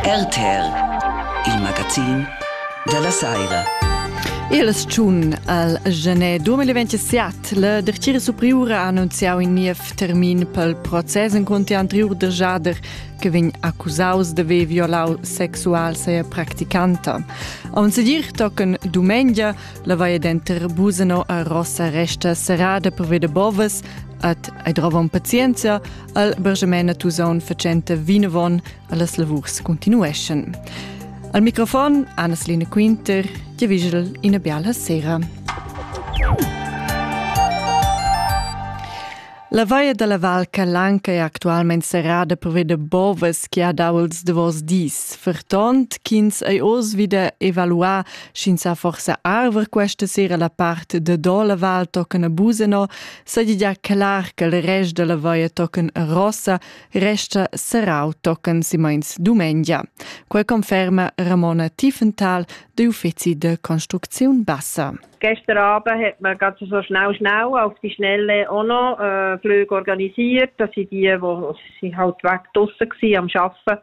RTL, il magazin dalla saira. Il tschun al genè 2027 la dertgira superiura ha annunziau in niev termin pel process en conti anteriur de Jader che vegn accusaus de haver violau sexual seia practicanta. Am sedir tocken domengia la vaia denter Buseno a Rossa resta serrada per veder bovas at ei drova un pazienza Al Bergemain a Tusaun facenta vinavon allas lavurs continueschan. Al microfon Anneslina Quinter, ti vigel ina biala sera. La vaia dalla Val Calanca è actualmente serrada per veder bovas che ha dau ils davos dis, fertont ch'ins ei oz wieder evaluar sch'ins ha forsa arver questa sera la part de do la Val toccana Buseno Sadia clar che il rest della vaia tochen a Rossa resta serrau tochen simeins dumengia. Quei conferma Ramona Tiefenthal de Uffizi de Construcziun Bassa. Gestern Abend hat man gerade so schnell schnell auf die Schnelle auch noch äh, Flüge organisiert. Das sind die, die sie halt weg draussen waren am Arbeiten.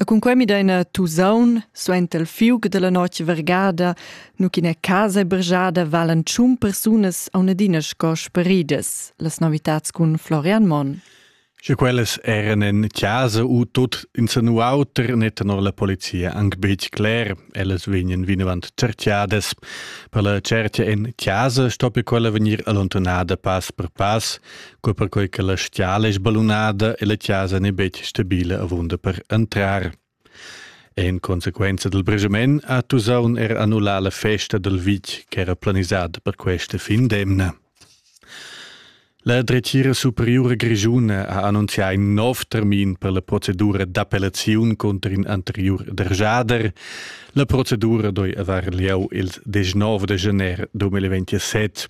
E cun quei mi daina tusaun suenter il fiug dalla notg vergada, nu ch'ina casa bergiada valan tschun persunas a un'adina sco sparidas, las novitats cun Florian Monn. Sche quellas eran in casa u tut insanu auter, ne tenor la polizia anc betg cler. Ellas vegnan vinavant certiadas. Per la certia en casa stoppi quella vegnir allontanada pass per pass, co perquei che la stiala è sballunada e la casa n'è betg stabile avunda per entrar. En consequenza del bregement ha Tusaun er annullà la festa del vitg ch'era planisada per questa fin d'emna. La dretgira superiura grigiuna ha annunzià in nov termin per la procedura d'appellaziun conter in anteriur derjader. La procedura doi avar lieu il 19 de gener 2027.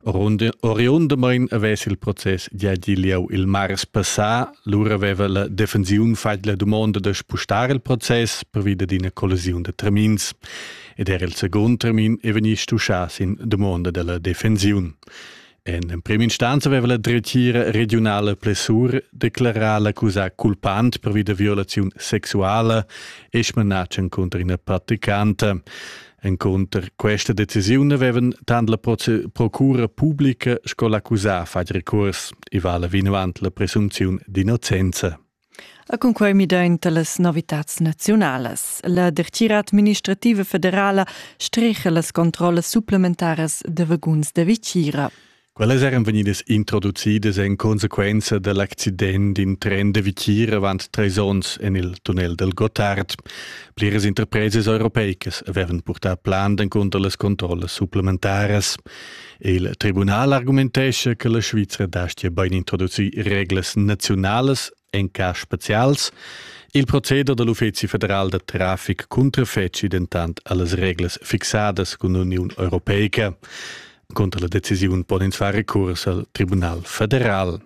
Oriundamain avess il process giadi lieu il mars passà, lura aveva la defensiun fatg la dumonda da spustar il process pervia d'ina collisiun da termins ed era il secund termin è vegnì stuschà sin dumonda della defensiun. En empriminstanza aveva la dretgira regionala Plessur declarà l'accusà culpant per via da violaziun sexuala e smanatschen contra ina praticanta. Encunter questa decisiun avevan tant la procura publica sco l'accusà fatg recurs. I vala vinavant la presunziun d'innocenza. A cunquai midaint da las novitads naziunalas. La dertgira administrativa federala strecha las controllas supplementaras da vaguns da vicira. Quellas eran vegnidas introducidas en consequenza dal accident in tren da Vichir avant trais onns en il tunnel del Gottard. Pliras interpresas europeicas avevan purtà plan encunter las controllas supplementaras. Il tribunal argumentescha che la Svizra dastia bain introducir reglas naziunalas en cas spezials. Il proceder dal Uffizi federal da traffic cuntrafeci dentant a las reglas fixadas cun l'Uniun Europeica. Conter la decisiun pon ins far recurs al Tribunal federal.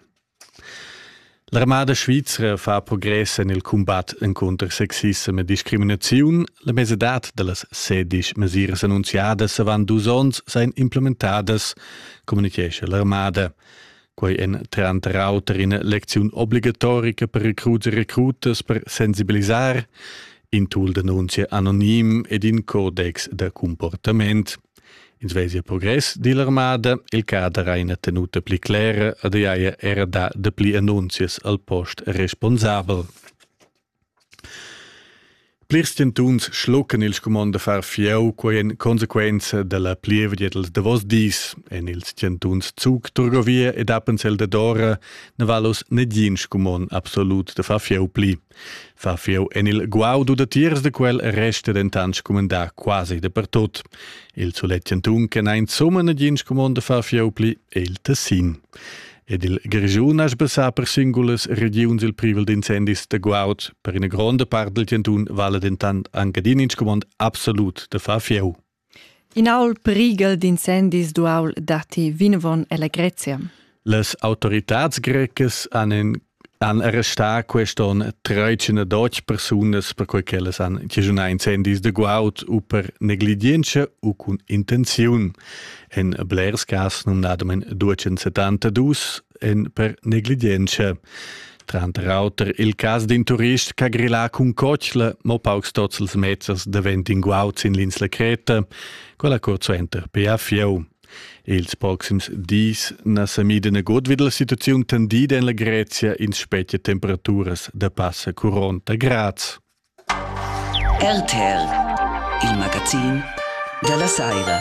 L'armada svizra fa progress en il combat encontro sexism e discriminaziun. La mesedad da las sedisch mesiras annunziadas avant dus onns seien implementadas, communichescha l'armada. Quei en tranter auter ina lecziun obligatorica per recruts e recrutas per sensibilisar, in tool d'annunzia anonim ed in codex da comportament. Ins vesia progress dill'armada, il cader ha ina tenuta pli clera ed ei haja era dà dapli annunzias al post responsabel. Plirs tentuns schluccan il scumond da far fieu, quei en consequenza dalla plievgia dils davos dis. En ils tentuns Zug, Turgovia ed Appenzell Dadora ne va los negin scumond absolut da far fieu pli. Far fieu en il guaudu datiers da quel resta dentant scumandà quasi dapertut. Il sulet chantun che n'ha insomma nagin scumond da far fieu pli è il Tessin. Ed il Grischun ha sbassà per singulas regiuns il privel d'incendis da guaud. Per ina gronda part del chantun vala dentant anche din in scumond absolut da far fieu. In aul prighel d'incendis d'uaul datti vinavon ella Grezia. Las autoritads grecas han, in, han arrestà quest onn 312 persunas perquai ch'ellas han chischunà incendis da guaud u per negligientscha u cun intenziun. En blers cas numnadamain 272 en per negligientscha. Tranter auter il cas d'in turist ch'ha grillà cun cotschla mo paucs tozzels mezzas davent in guaud sin l'insla Creta, quella curt suenter per a Fieu. Ils proxims dis na sa mida nagut vid la situaziun tendida en la Grezia in spetga temperaturas da passa 40 grads. RTL, il magazin dalla saira.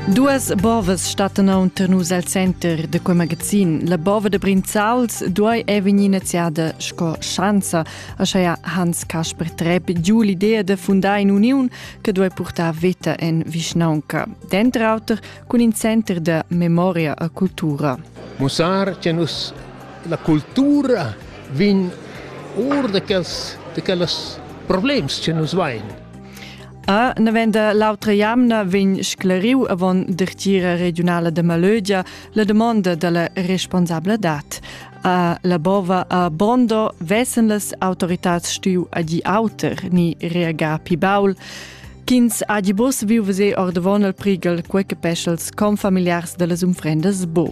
Duas bovas stattan aunter nus al center da quei magazin. La bova de Brinzauls duai è vegnir iniziada sco schanza, aschia Hans Kasper Trepp giu l'idea de fundar in uniun che duai purtar veta en vischnaunca. Dentr auter cun in center de memoria a cultura. Mussar che nus La cultura vegn or da quels, da quellas problems che nus vain. A navenda l'autra jamna vegn scleriu avon dertira regionala de Malögia la domanda dalla responsabladad. A la bova a Bondo vessen las autoritats stiu adi auter ni reagar pi baul. Kins adi bus viu vese ordavon al prigel quei che peschels confamiliars dellas unfrendas bo.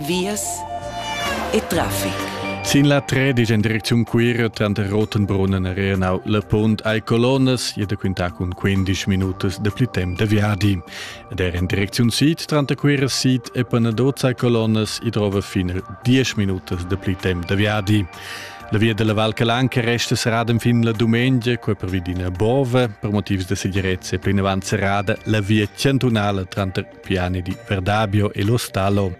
vias e traffic. Sin la 13 in direcziun Cuira tranter Rotenbrunnen e Rhenau la punt ai colonnas e da quintar cun 15 minutas de pli temp de viadi. Ed er in direcziun sid tranter Cuira sid e Panadozza ai colonnas i trova fino 10 minutas de pli temp de viadi. La via della Val Calanca resta serrada fin la domenica, quei per vid ina bove, per motivs de segirezza e plinavant serrada la via cantunala tranter piani di Verdabio e Lo Stalo.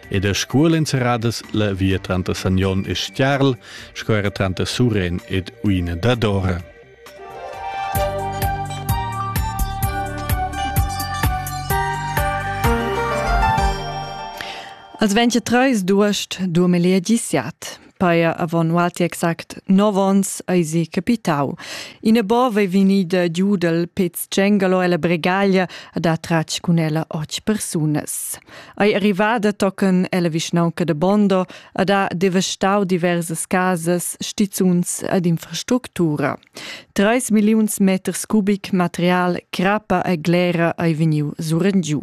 Ed a scuol inserradas la via tranter Sagnon e Stiarl, sco era tranter Suren ed Uina Dadora. Als 23 d'uost 2017 paia avon ualti exact 9 ons eisi capitau. Ina bova ei vegnida giu dal Pez tgengalo ella bregaglia a da tratg cun ella och persunas. Ei arrivada tochen ella vischnaunca de Bondo a da devastau diversas casas, stizuns ed infrastructura. 3 milliuns meters cubic material, crappa e glera ei vegniu surengiu.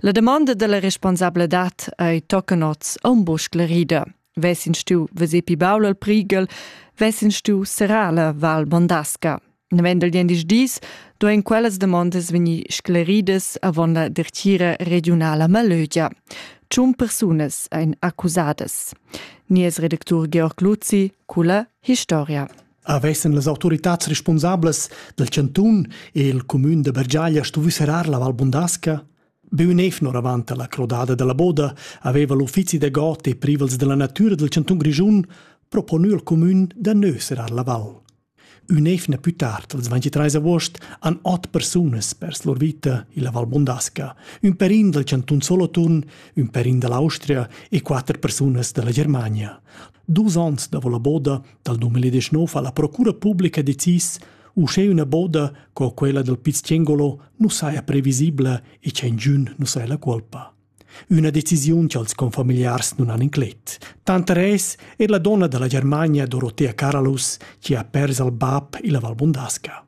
La domanda della responsabladad ei tochen oz aunc buca sclerida. Vessin stiu veser pi baul al prighel, vessin stiu serrar la Val Bondasca. Navendel diendisch dis duein quellas demondas vegnir scleridas avon la dertira regionala Malögia. Tschun persunas ein accusadas. Nies redactur Georg Luzi culla historia. Avessen las autoritads responsablas dal chantun e il cumün de Bergiaglia stuvi serrar la Val Bondasca? Bünevn oravant alla crodada dalla boda haveva l'uffizi da god e privels della natura del cantun Grischun proponü al comün da nöserar la val. Ün'evna più tard, als 23 agost, han ot persunas pers lur vita illa Val Bondasca, ün perin dal cantun Soloturn, ün perin dall'Austria e quatter persunas dalla Germania. Dus onns davo la boda dal 2019 ha la procura publica decis uschè üna boda co quella dal Pizziengolo nu saja previsibla e tschengiün nu saja la colpa. Üna decisiun cha'ls confamiliars nun han inclet. Tanter es er la donna da la Germania Dorotea Karalus chi ha pers al bap illa Val Bundasca.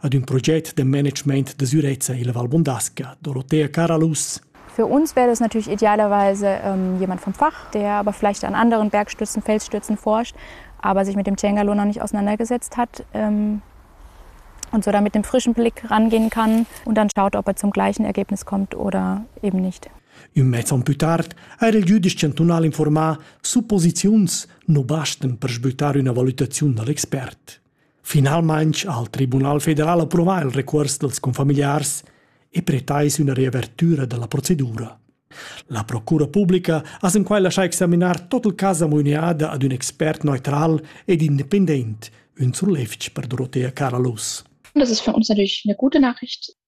ad ün proget de management de sürezza illa Val Bondasca, Dorothea Caralus. Für uns wäre das natürlich idealerweise ähm, jemand vom Fach, der aber vielleicht an anderen Bergstützen, Felsstützen forscht, aber sich mit dem Cengalo noch nicht auseinandergesetzt hat ähm, und so da mit dem frischen Blick rangehen kann und dann schaut, ob er zum gleichen Ergebnis kommt oder eben nicht. Ün mez on pü tard eir il jüdisch chantunal informà supposiziuns nu bastan per sbüttar üna valutaziun dal expert. Finalmain ha il Tribunal federal approvà il recuors dals confamiliars e pretais üna riavertüra da la procedura. La procura publica ha sin quai laschà examinar tot il cas amuiniada ad ün expert neutral ed independent, ün sur lefch per Dorotea Caralus. Das ist für uns natürlich eine gute Nachricht.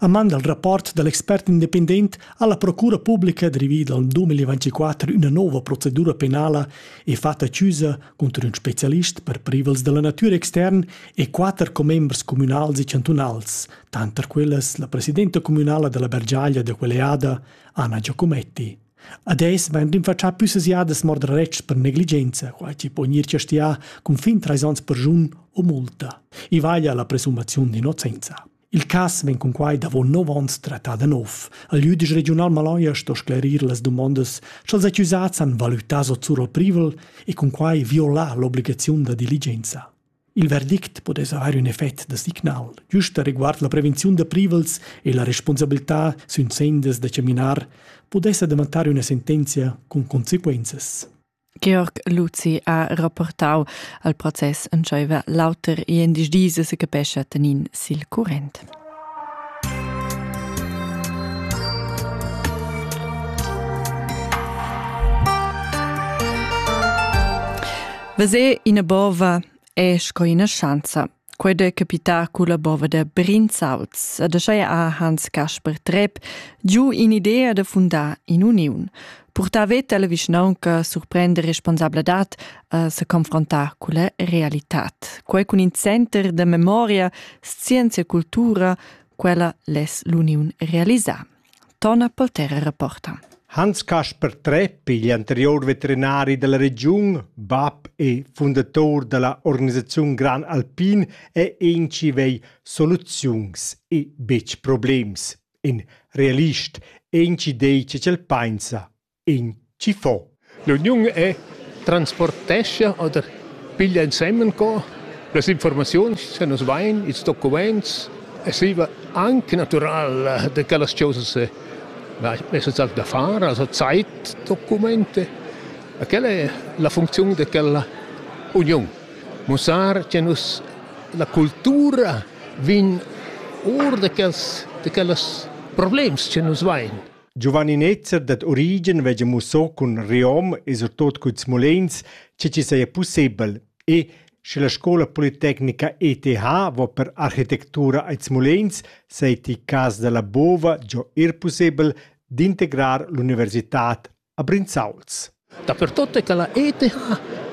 A man dal rapport da l'expert independent ha la procura publica drivì dal 2024 üna nouva procedura penala e fatta chiusa cunter ün specialist per privels da la natüra extern e quatter commembers cumünals e chantunals, tanter quellas la presidenta cumünala da la Bergiaglia da quell'eada, Anna Giacometti. Adeis vain rinfachà püssas jadas mordraretschs per negligenza, quai chi po gnir chastià cun fin trais ons per jun o multa. I vaglia la presumziun d'innocenza. Il cas vegn cunquai davon nov onns trattà da nov. Il lieu digl regiunal Maloia sto sclerir las dumondas ch'als accusats han valutà sot surroprivel e cunquai violar l'obligaziun da diligenza. Il verdict potess haver ün effect da signal, giusta riguard la prevenziun da privels e la responsabilità sün sendas da chaminar, pudessa davantar üna sentenzia cun conseguenzas. Georg Luzi ha rapportau al process entscheiva l'auter e en dis dis se capescha tenin sil current. Vese ina bova è sco ina schanza Quei de capitar culla bova da Brinzauts, ad ascheia ha Hans Kasper Trepp giu in'idea da fundar in'uniun, purtar veta alla vischnaunca, surprender responsabladat a se confrontar culla realitat. Quei cun in center da memoria, scienzia e cultura, quella les l'uniun realisar. Tona Poltera rapporta. Hans Kasper Trepp, igl anterior veterinari dalla regiun, bab e fundator dalla organisaziun Gran Alpin, è enci vei soluziuns e betg problems. In realist enci dei che el pensa. In chi fo? L'uniun è transportescha oder piglia ensemen co las informaziuns che nus vain, ils documents e stiva anche natural da quellas chosas necessarie da far, also Zeitdokumente. E quella è la funcziun da quella uniun. Mussar che nus la cultura vegn or da quels da quellas problems che nus vain. Giovanni Netzer dad Origen veggia musso cun Riom e surtot cun Smolenz che ci saja pussebel e sche la scola politecnica ETH va per architectura ad Smolenz, seiti cas dalla Bova giò er pussebel d'integrar l'universitad a Brinzauls. Dapertut è quella ETH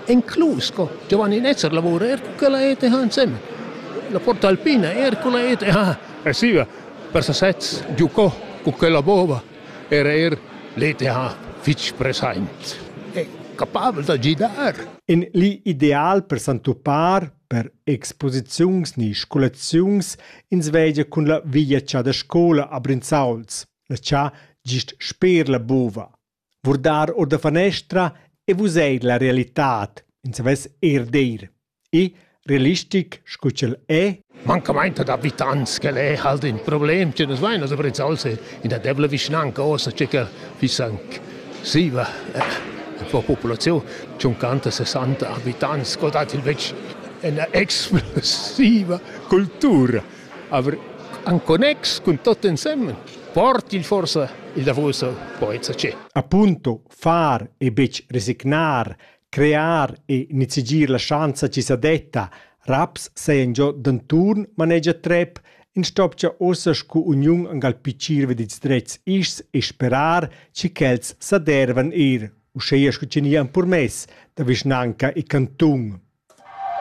inclus sco giovan in ester lavura er cun quella ETH ensemen. La Porta Alpina er cun la ETH e siva per sasez giucò cu quella bova era er l'ETH fitg present. È capavel da gidar. In li ideal per s'entupar per exposiziuns ni scolaziuns ins vegia cun la viagiar da scola a Brinzauls, la cha gist sper la bova. Vurdar or da fanestra e vesair la realitad ins savess eir dir. I realistic scu ch'el è. Mancamainta da vita ans ch'el è halt ün problem, tü nu's vain as apprezza'ls in der debla vischnanca ossa, tge che fiss anc siva e po populaziun tschunchanta, sessanta abitants, scoldate il vegl, üna explosiva cultura. Aber en connex cun tot ensemen portil forsa il davos al poeta ce. Appunto far e betg resignar, crear e nizigir la schanza ci sa detta, raps seien giò d'anturn manegia Trepp, in stopcha ossa scu uniun angal picir vedits drets ischs e sperar ci quels sa dervan ir, uscheia scu ci nian purmess da vischnanca e cantun.